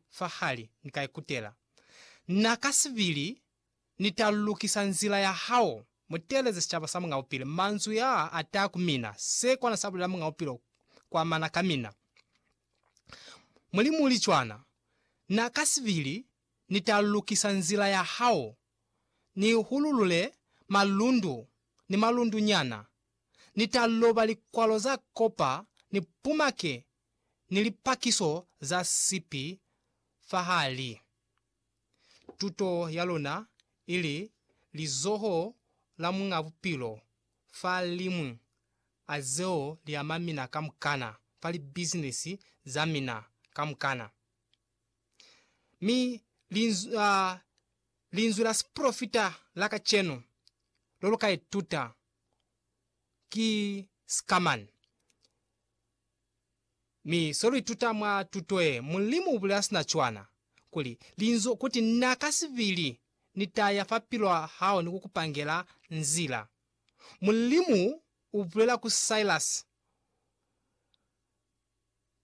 fahali, Ni ka ikutela. Na kasibili, Ni ta lukisa nzila ya hao. Muteeleze sicaba sa Mungaupile. Manzwi yaa ataa ku mina. Se kona sa bulela Mungaupile kwa mana ka mina. Mulimu uli cwana. Na kasibili, Ni ta lukisa nzila ya hao. Ni hululule malundu ni malundunyana. Ni ta loba likwalo za kopa, ni pumake ni lipakiso za sipi fahali. Tuto ya luna ili lizoho la Muñ'a Bupilo fa liñwi a zeo li ama mina kamukana fa libizinisi za mina kamukana. Mi linzwi, uh, linzwi la sipolofita la kacenu lo lu ka ituta ki sikamani. Mi se lu ituta mwa tuto ye, Mulimu u bulela sina cwana, kuli, Linzwi, kuti, Na ka sibili Ni ta ya fa pilu ya hao ni ku ku pangela nzila. Mulimu u bulela ku Silas.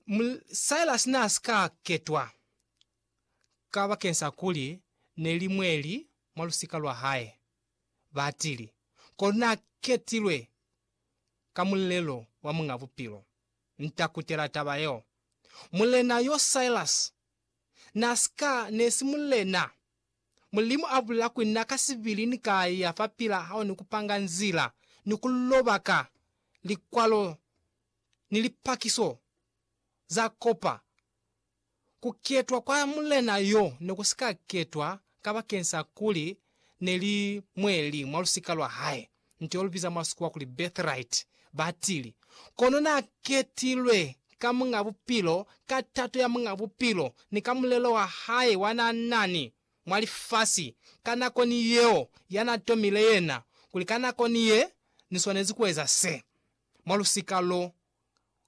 Mul, Silas n'a si ka ketwa, kabak'eñ'sa kuli ne li mweli mwa lusika lwa hae. batili, kono n'a ketilwe ka mulelo wa Muñ'a Bupilo. Nta kutela taba yeo. Mulena y'o Silas n'a si ka ne si mulena. Mulimu a bulela kuli na ka sibili ni ka ya fa pila hao ni ku panga nzila ni ku loba ka likwalo ni lipakiso za kopa Ku ketwa kwa Mulena yo ne ku si ka ketwa kabakeng sa kuli ne li mwe li mwa lusika lwa hae, nto yo lu biza mwa Sikuwa kuli birthright, batili, kono na ketilwe ka Muñ'a Bupilo, ka tato ya Muñ'a Bupilo, ni ka mulelo wa hae wa na na ni mwa lifasi ka nako ni yeo ya na tomile yena, kuli ka nako ni ye ni swanezi ku eza se, mwa lusika lo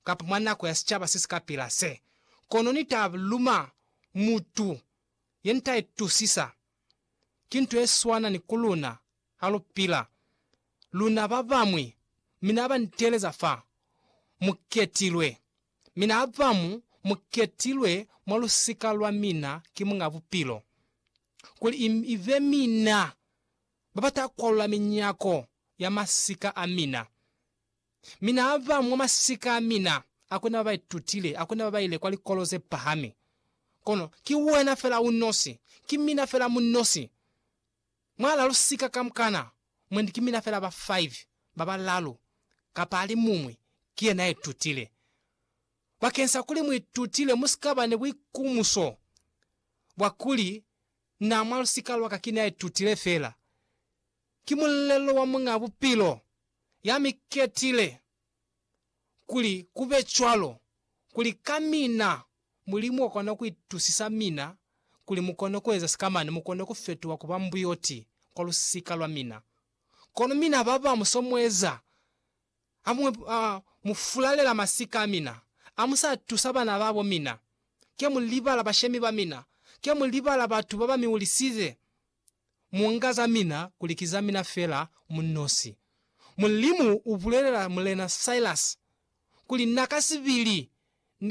kapa mwa nako ya sicaba se si ka pila se, kono Ni ta luma mutu ye nita itusisa. Ki nto ye swana ni ku luna, ha lu pila, luna ba bamwi, mi na ba nteleza fa, Mu ketilwe. Mi na ba mu, mu ketilwe mwa lusika lwa mina ki Muñ'a Bupilo, kuli i, i be mina ba ba ta kwalula minyako ya masika a mina. Mi n'a ba mwa masika a mina, a ku na ba ba itutile, a ku na ba ba ile kwa likolo ze pahami. Kono ki wena fela u nosi, ki mina fela mu nosi. Mwa la lusika kamukana, mwendi ki mina fela ba five, ba balalu, kapa a li muñwi, ki yena ya itutile. Bakensa kuli mu itutile, mu si ka ba ni buikumuso bwa kuli, Na, mwa lusika lwa ka ki ne a itutile fela. Ki mulelo wa Muñ'a Bupilo ya mi ketile kuli ku be cwalo, kuli ka mina Mulimu wa kona ku itusisa mina kuli mu kone ku eza sika mane mu kone ku fetuha ku ba mbuyoti kwa lusika lwa mina. Kono mina ba bamu so mu eza, ha mu, ha mu fulalela masika a mina, ha mu sa tusa bana ba bo mina, ke mu libala bashemi ba mina, ke mu libala batu ba ba mi ulisize. mu nga za mina kuli ki za mina fela mu nosi. Mulimu u bulelela Mulena Silas kuli na ka sibili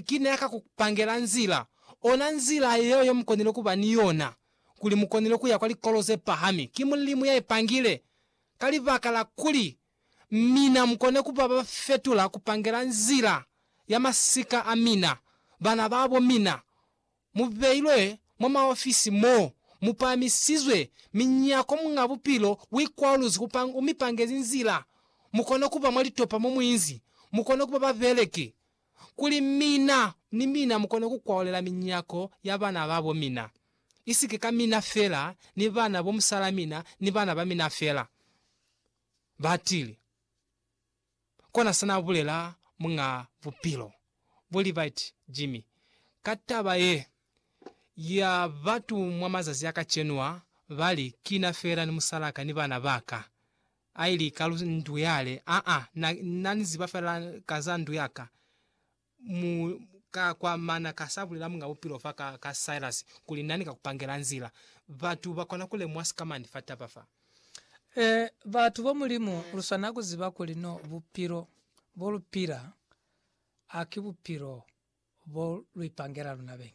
ki ne a ka ku pangela nzila, ona nzila yeo ye mu konile ku ba ni yona, kuli mu konile ku ya kwa likolo ze pahami. Ki Mulimu ya i pangile, ka libaka la kuli mina mu kone ku ba ba fetula ku pangela nzila ya masika a mina, bana ba bo mina. mu beilwe mwa maofisi mo mu pahamisizwe minyako Muñ'a Bupilo u ikwaluzwi ku panga, u mi pangezi nzila mu kone ku ba mwa litopa mo mu inzi mu kone ku ba babeleki, kuli mina ni mina mu kone ku kwaolela minyako ya bana ba bo mina, isike ka mina fela ni bana bo musalamina ni bana ba mina fela. Batili. Kona sa n'a bulela Muñ'a Bupilo, Bo Levitt Jimmy, ka taba ye ya batu mwa mazazi a kacenu a, ba li, Ki na fela ni musal'a ka ni bana ba ka. A ili ka lu ndu yale, Aa, na, na ni ziba fela ka za ndu ya ka. mu ka kwa mana ka sa bulela Muñ'a Bupilo fa ka, ka Silas, kuli nani ka ku pangela nzila. Batu ba kona ku lemuha sikamañi fa taba fa? Ee, batu ba Mulimu, lu swanela ku ziba kuli no bupilo bo lu pila ha ki bupilo bo lu ipangela luna beñi.